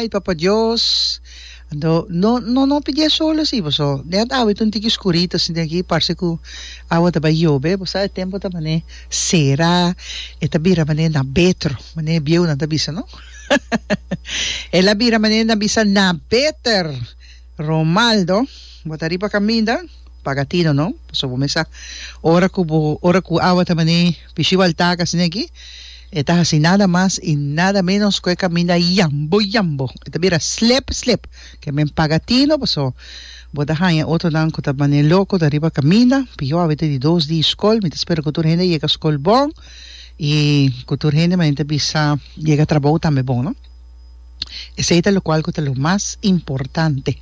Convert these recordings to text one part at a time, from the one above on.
Ai Papa Dios, no no no no pidié solo así paso net awe ta un tiki skurito sinti aki parse ku awa ta bai yobe bo sa e tempo ta mane sera e ta bira mane na betro mane e bieunan ta bisa no el a bira mane na bisa na beter Romaldo bo ta riba kaminda paga tino no paso bo me sa ora ku bo ora ku awa ta mane Pishibal takas negi e ta hasi nada mas i nada menos ku e kaminda yambo yambo, e ta bira slep slep, ke men paga tino paso bo ta haña otronan ku ta manera loko ta riba kaminda, pio a wete di dos di skol, mi ta spera ku tur hende yega skol bon i ku tur hende manera ta bisa yega trabou tambe bon no. Esei ta lokual ku ta lo mas importante,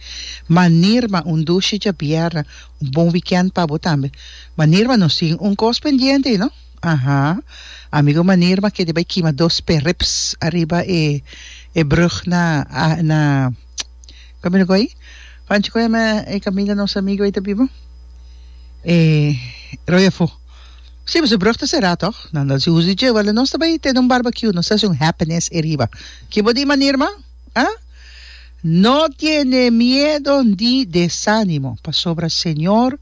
manirma un dushicha bierna. Un bon weekend pa bo tambe. Manirma nos tin un cos pendiente y no? Aha. Amigo Manirma kende bay kima dos perrips ariba e e brug na na Kami lo goy? Pancho con e Camila nos amigo ay ta biba? E Royafo. Si pues e brug ta cera toch? Nan ta hasi uso di dje. Wele nos ta bay tene un barbecue nos ta hasi un happiness e riba. Ki bo di Manirma? Ah? No tiene miedo ni desanimo, pasobra Señor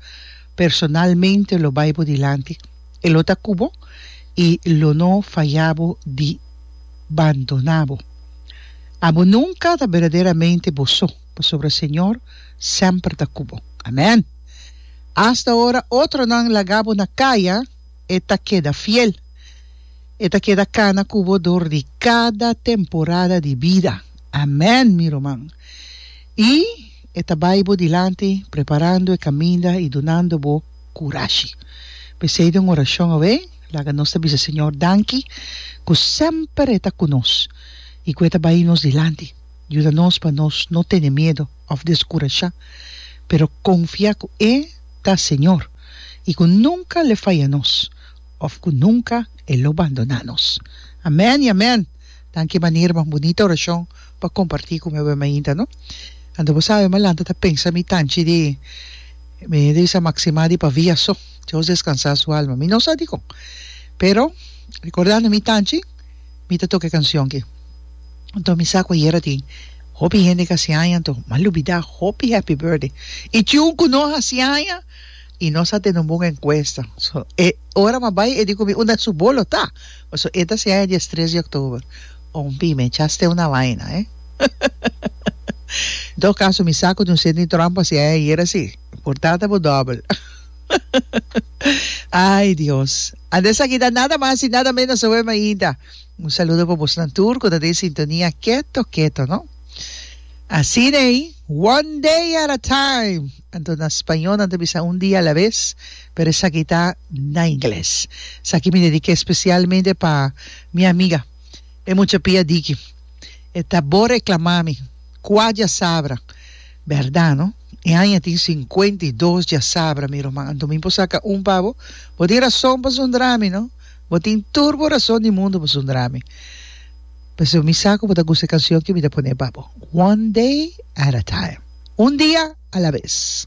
personalmente lo bai bo dilanti, E lo ta cu bo y lo no faya bo di bandona bo. Abo nunca ta berdaderamente bo so, pasobra Señor semper ta cu bo. Amen! Hasta ora otronan laga bo na caya. E ta keda fiel. E ta keda kana ku bo dor di kada temporada di bida. Amèn, mi ruman. I E ta bai bo dilanti, preparando e kaminda i dunando bo kurashi. P'esei den orashon awe, laga nos ta bisa Señor danki ku semper E ta ku nos i ku E ta bai nos dilanti. Yuda nos pa nos no tene miedu òf deskurashá, pero konfia ku E ta Señor. i ku nunka l'e faya nos òf ku nunka e lo bandoná nos. Amèn i amèn! Danki e manera mas bunita orashon pa kompartí ku mi awor mainta, no? Anto bo sabe, mi a lanta ta pensa mi tanchi di mi a bisa Maximá di Pavia so. Dios descansá su alma. Mi no sa dikon, pero rekordando mi tanchi. Mi ta toka e kancion ki. Anto mi sa ku ayera tin hopi hende ka hasi aña anto m'a lubida hopi happy birthday. I ciun ku no hasi aña i no sa te numbun enkuesta. So e ora m'a bai e di ku mi unda su bolo ta. Paso e ta hasi aña dies tres di oktober. Ompi mi e chast'e una baina he. En todo kaso mi sa ku di un sende di trampa hasi aña ayera si. Por tata bo dobel. Ai Dios. Ande esaki ta nada mas y nada menos aweh mainta. Un saludo pa bosnan tur cu ta den sintonia keto keto no. Asina ey, one day at a time. Anto na spañol nan ta bisa un dia a la vez, pero esaki ta na ingles. Esaki mi dedica especialmente pa mi amiga, e mucha pia diki. E ta bo reclama mi, cua djasabra. Berdad no. E aña tin sinkuenta i dos djasabra, mi ruman. Anto mi por saka un pa bo. Bo tin rason pa sundra mi, no? Bo tin tur bo rason di mundu pa sundra mi. P'esei mi sa ku bo ta gusta e kansion ke mi ta pone pa bo, One Day at a Time, Un Dia a la Bes.